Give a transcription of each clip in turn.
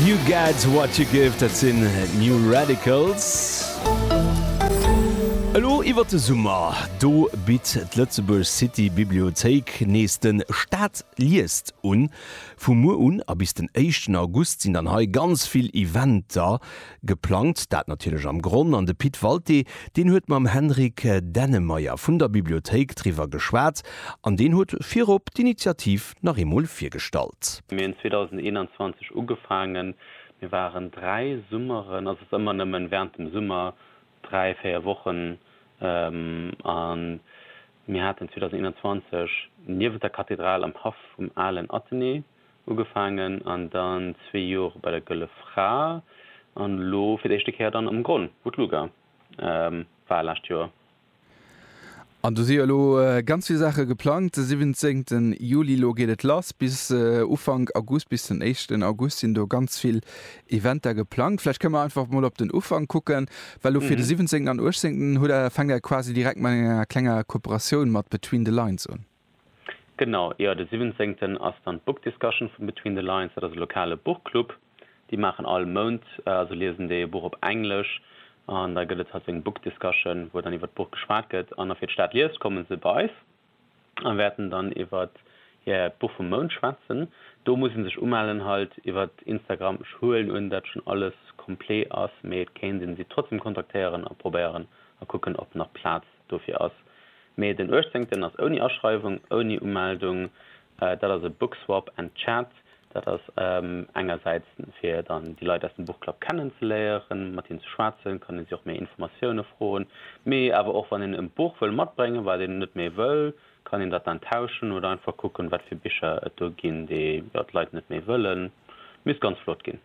You get what you give, dat sinn d'New Radicals. Elo iwwer de Summer, do bitt d'Lëtzebuerg City Bibliothéik nees de Stad liest un. Vu muer un a bis den éischten August sinn dann hei ganz vill Eventer geplangt. Dat natierlech am Gronn an de Pit Walté, deen huet mam Henrik Dennemeyer vun der Bibliothéik driwwer geschwat an deen huet virop d'Initiativ nach eemol virgestallt. Mir hunn 2021 ugefaangen. Mir waren dräi Summeren, also et ass ëmmer nëmmen während dem Summer, dräi, véier Wochen, a mir haten 2021 niewent der Kathedral am Haff vum alen Athenée ugefaangen an dann zwee Jore bei der Gëlle Fra an elo fir d'éischte Kéier dann am Gronn, wou d'Luga war, lescht Joer. An do si jo elo ganz vill Saache geplangt. De 17 Juli, elo geet et lass, bis Ufank August, bis den éischten August sinn do ganz vill Eventer geplangt. Vläicht kënne mer einfach mol op den Ufank kucken, well elo fir de 17 an 18 hutt Der, fänkt Der quasi direkt mat enger klenger Kooperatioun mat Between the Lines un. Genau, jo, de siwwenzéngten ass dann d'Book Discussion vum Between the Lines. Dat ass e lokale Buchclub. Déi maachen all Mount, also liesen déi e Buch op Englesch an da gëtt et halt sou eng Book Discussion, wou dann iwwert d'Buch geschwat gëtt. An afir d'Stad liest, komme se bei eis a wäerten dann iwwert hiert Buch vum Mount schwätzen. Do muss ee sech umellen halt iwwert Instagram. Ech huelen un, dat schonn alles complet ass, mee et kéint ee se trotzdem kontaktéieren a probéieren a kucken, ob nach Plaz Dofir ass. Mee den uechtzéngten ass ouni Aschreiwung, ouni Umeldung. Dat ass e Bookswap and Chat. Dat ass engersäits fir dann déi Leit aus dem Buchclub kennen ze léieren, mat hinnen ze schwätzen, kann ee si och méi Informatioune froen. Mee awer och wann een e Buch wëll matbréngen, wat een net méi wëll, kann een dat dann tauschen oder einfach kucken, wat fir Bicher et do ginn, déi jo d'Leit net méi wëllen. Misst ganz flott ginn.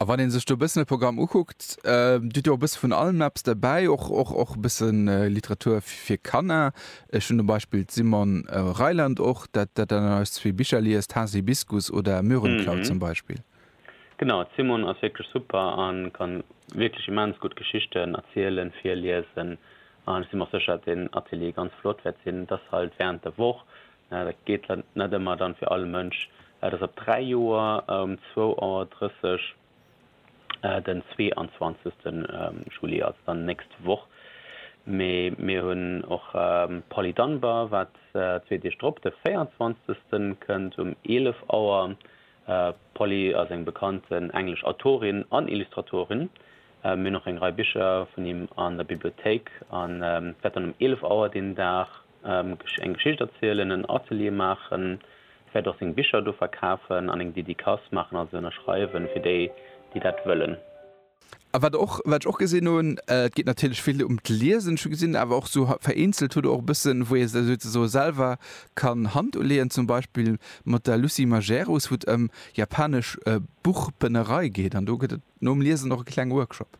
A wann een sech do e bëssen de Programm ukuckt, Dir hutt jo och e bësse vun allem eppes derbäi, och, och, och e bëssen Literatur fir Kanner. Ech hunn zum Beispill d'Simone Reiland och, dat dat dann eis zwee Bicher liest, Haasibiskus oder Möhrenklau zum Beispill. Genau, d'Simone ass wierklech super a ka wierklech immens gutt Geschichten erzielen, virliesen. An ech si mer och sécher, datt deen Atelier ganz flott wäert sinn. Et ass halt wärend der Woch, Dat geet net ëmmer dann fir all Mënsch. Dat ass op 3 Joer um 2.30 Auer den 22. Juli, also dann nächst Woch. Mee mir hunn och Polly Dunbar, wat zwee Deeg drop de 24. kënnt um 11 Auer. D'Polly ass eng bekannt englesch Autorin an Illustratorin. Mir hunn och eng Rei Bicher vun him an der Bibliothéik. An dat dann um 11 Auer deen Dag. eng Geschicht erzielen, en Atelier maachen, vläicht och seng Bicher do verkafen an eng Dedicace maachen, also ënnerschreiwen, fir déi, déi dat wëllen. A wat och, wat ech och gesinn hunn, et geet natierlech vill ëm d'Liesen, ech hu gesinn awer och sou vereenzelt hutt Der och e bëssen, wou ee sech souzesoe selwer kann Hand uleeën, zum Beispill mat der Lucie Majerus, wou et ëm japanesch Buchbënnerei geet an do gëtt et nom Liesen och e klenge Workshop.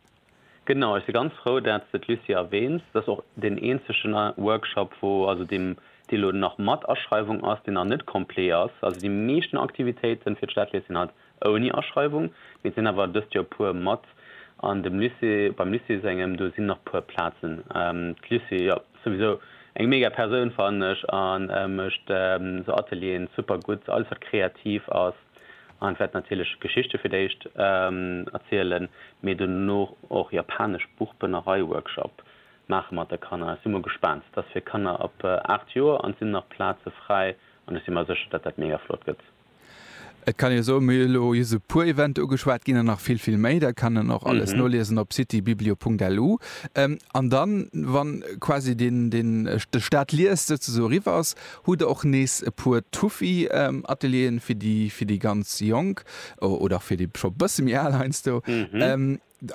Genau, ech si ganz frou dat s de d'Lucie erwähns. Dat ass och deen eenzegen Workshop wou, also deem dee lo nach mat Aschreiwung ass, deen nach net complet ass. Also déi meeschten Aktivitéiten fir d'Stadlees sinn halt ouni Aschreiwung, mee et sinn awer dëst Joer puer mat an dem Lycée, beim Lycée sengem, do sinn nach puer Plazen. D'Lucie, jo, souwisou eng mega Persoun fannen ech a mécht sou Atelieren super gutt, alles wat kreativ ass. An et wäert natierlech Geschichte fir d'éischt erzielen, mee duerno och japanesch Buchbënnerei-Workshop maache mat de Kanner. Ech si mol gespaant. Et ass fir Kanner ab 8 Joer an et sinn nach Plaze fräi an ech si mer sécher, datt dat mega flott gëtt. Et kann ee soen, mir hu lo just e puer Eventer ugeschwat, ginn der nach vill, vill méi. Dat kann een och alles noliesen op citybiblio.lu. An dann, wann quasi den, den, de Stade liest souzesoe eriwwer ass, Hutt der och nees e puer Tuffi Atelieren fir déi fir déi ganz Jonk oder fir déi scho bësse méi al heiansdo?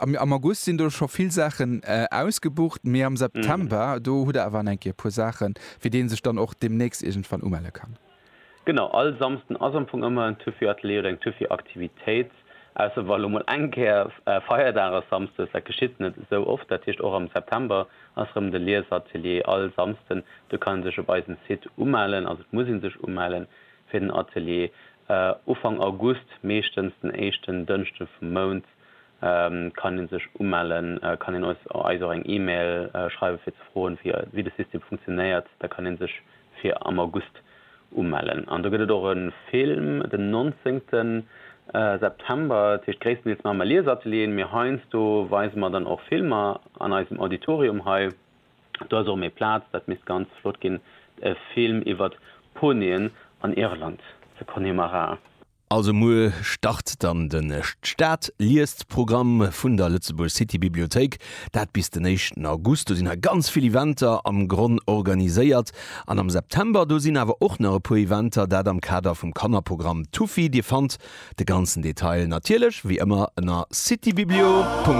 Am August sinn do scho vill Saachen ausgebucht, mee am September do hutt der awer an eng Kéier e puer Saachen, fir dee sech dann och deemnächst iergendwann umelle kann. Genau, all Samsden ass am Fong ëmmer en Tuffi Atelier oder eng Tuffi Aktivitéit. Ausser wa lo mol eng Kéier Feierdag ass samsdes, dat geschitt net esou oft. Dat heescht och am September ass rëm de Liesatelier all Samsden. Do kann ee sech op eisem Site umellen, also et muss ee sech umellen fir den Atelier. Ufank August, meeschtens den éischten Dënschden vum Mount, kann ee sech umellen, kann een eis och eng Email schreiwen fir ze froen wéi de System funktionéiert. Da kann ee sech fir am August umellen. An do gëtt et och e Film den 19 September, dat heescht gréisstendeels maache mer Liesatelieren, mee heiansdo weise mer dann och Filmer an eisem Auditorium hei. Do ass och méi Plaz, dat misst ganz flott ginn, e Film iwwert Ponien an Irland, ze Connemara. Also muer start dann den D'Stad liest Programm vun der Lëtzebuerg City Bibliothéik, dat bis den éischten August. Do sinn hei ganz vill Eventer am Gronn organiséiert an am September do sinn awer och nach e puer Eventer, dat am Kader vum Kannerprogramm Tufi. Dir fannt de ganzen Detail natierlech wéi ëmmer ënner citybiblio.